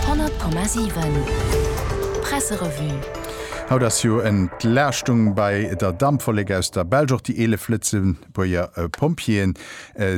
100,7 Presserevue. Haut ass jo Entlaaschtung bei der Dampwollek aus der Belsch. Och déi 11 Lëtzebuerger Pompjeeë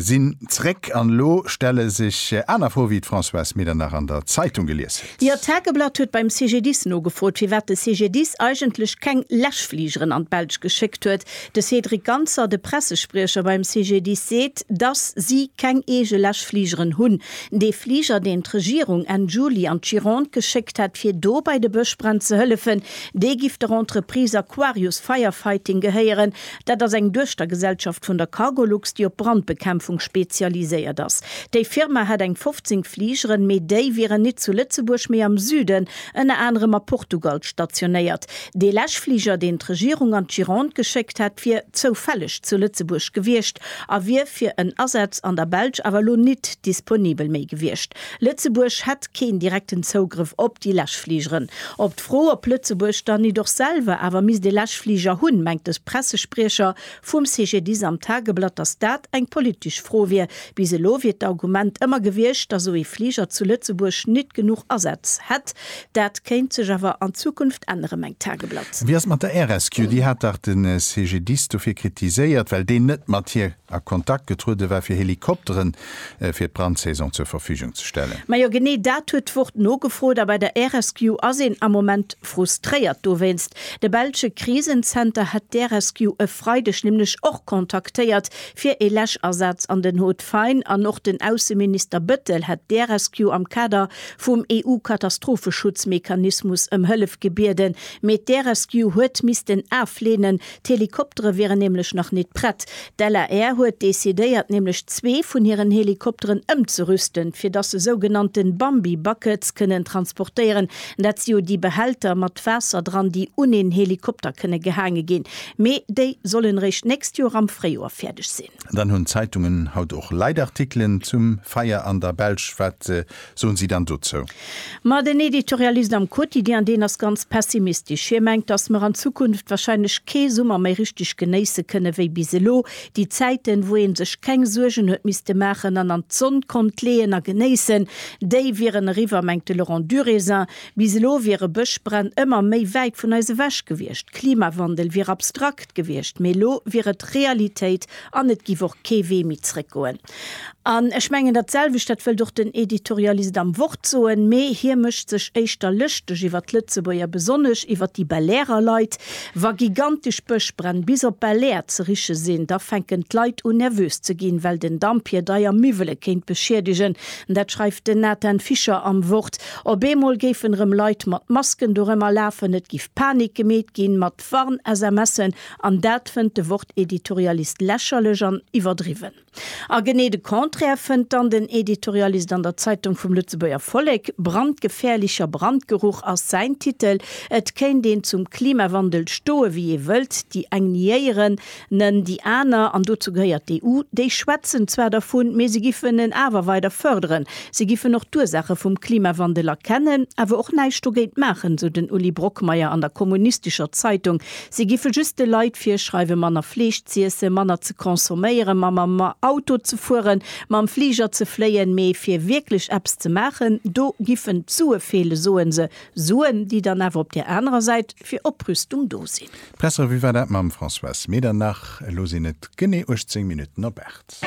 sinn zréck. An elo stelle sech aner Froe wéi d'Françoise Medernach an der Zeitung gelies huet. Jo, d'Tageblatt huet beim CGDIS nogefrot, firwat de CGDIS eigentlech keng Läschfligeren an d'Belsch geschéckt huet. De Cédric Ganser, de Pressespriecher beim CGDIS seet, dass si keng eege Läschfligeren hunn. Dee Fliger, deen d'Regierung Enn Juli an d'Gironde geschéckt hätt, fir do bei de Bëschbränn ze hëllefen, dee giff der Entreprise Aquarius Firefighting gehéieren. Dat ass eng Duechtergesellschaft vun der Cargolux, déi op Brandbekämpfung spezialiséiert ass. Déi Firma hätt eng 15 Fligeren, mee déi wieren nit zu Lëtzebuerg, mee am Süden, ënner anerem a Portugal stationéiert. Dee lech Fliger, deen d'Regierung an d'Gironde geschéckt hätt, wier zoufälleg zu Lëtzebuerg gewiescht a wier fir en Asaz an der Belsch awer elo nit disponibel méi gewiescht. Lëtzebuerg hätt keen direkten Zougrëff op déi Läschfligeren. Op d'Fro, ob Lëtzebuerg dann nit och selwer awer misst ee Läschfliger hunn, mengt de Pressespriecher vum CGDIS am Tageblatt, datt dat eng politesch Fro wier. Bis elo wier d'Argument ëmmer gewiescht, datt esou ee Fliger zu Lëtzebuerg nit genuch Asätz hätt, Dat kéint sech awer an Zukunft ännere, mengt d'Tageblatt. Wéi ass et mat der RSQ? Déi hat dach de CGDIS dofir kritiséiert, well deen net mat hir a Kontakt getruede war, fir Helikoptere fir d'Brandsaison zur Verfügung ze stellen. Majo, genee dat huet d'Wort nogefrot. A bei der RSQ ass een am Moment frustréiert dowéinst. De belsche Krisenzenter hätt d'RSQ e Freideg nämlech och kontaktéiert, fir ee Läschasaz an den Haut-Fayn. An och den Ausseminister Bettel hätt d'RSQ am Kader vum EU-Katastropheschutz-Mechanismus ëm Hëllef gebieden, mee d'Air-Rescue huet missten afleenen, d'Helikoptere wieren nämlech nach nit prett. D'LAR huet decidéiert nämlech zwee vun hiren Helikopteren ëmzerüsten, fir dass se sougenannte Bambi-Buckets kënnen transportéieren, dat si jo déi Behälter mat Waasser dran, déi un een Helikopter kënne gehaange ginn, mee déi sollen eréischt d'nächst Joer am Fréijoer fäerdeg sinn. Dann hunn d'Zeitungen haut och Leitartikelen zum Feier an der Belsch, wat soen si dann dozou? Ma den Editorialist am Quotidien, deen ass ganz pessimistesch. Hie mengt, datt mer an Zukunft warscheinlech kee Summer méi richteg genéisse kënne wéi bis elo. Déi Zäiten, wou ee sech keng Suergen huet misste maachen an an d'Sonn konnt leeën a genéissen, déi wieren eriwwer, mengt de Laurent Durézin. Bis elo wiere Bëschbränn ëmmer méi wäit vun eis ewech gewiescht. Klimawandel wier abstrakt gewiescht, mee elo wier et Realitéit an et giff och kee Wee méi zréckgoen. An ech mengen dat selwecht, dat wëllt och den Editorialist am Wort soen, mee hie mécht sech éischter lëschteg iwwer d'Lëtzebuerger, besonnesch iwwer déi Belairer Leit. Wa gigantesch Bëschbränn bis op Belair ze riche sinn, da fänken d'Leit un nervös ze ginn, well den Damp hir deier Miwwele kéint beschiedegen. Dat schreift den Nathan Fischer am Wort. Op eemol géifen erëm Leit mat Masken dorëmmer lafen, et giff Panik gemeet ginn, mat. Wort Warn-SMSen an dat fënnt de Wort-Editorialist lächerlech an iwwerdriwwen. A genee de Contraire fënnt dann den Editorialist an der Zeitung vum Lëtzebuerger Vollek, Brandgefährlicher Brandgeruch ass säin Titel. Et kéint een zum Klimawandel stoe wéi ee wëllt, déi eng niéieren, Nen déi aner, an dozou gehéiert d'EU, déi schwätzen zwar dervun, mee se giffen en awer weider fërderen. Se giffen och d'Ursaache vum Klimawandel erkennen, awer och näischt dogéint maachen, sou den Uli Brockmeyer an der kommunistescher Zeitung. Se giffe just de Leit virschreiwe manner Fleesch z'iesse, manner ze consomméieren, mam Auto ze fueren, mam Fliger ze fléien, mee fir wierklech eppes ze maachen, do giffen d'Sue feele, soe se. Suen, déi dann awer op där anerer Säit fir Oprüstung do sinn. D'Pressrevue war dat mam Françoise Medernach. Elo sinn et genee 18 Minutten op 8.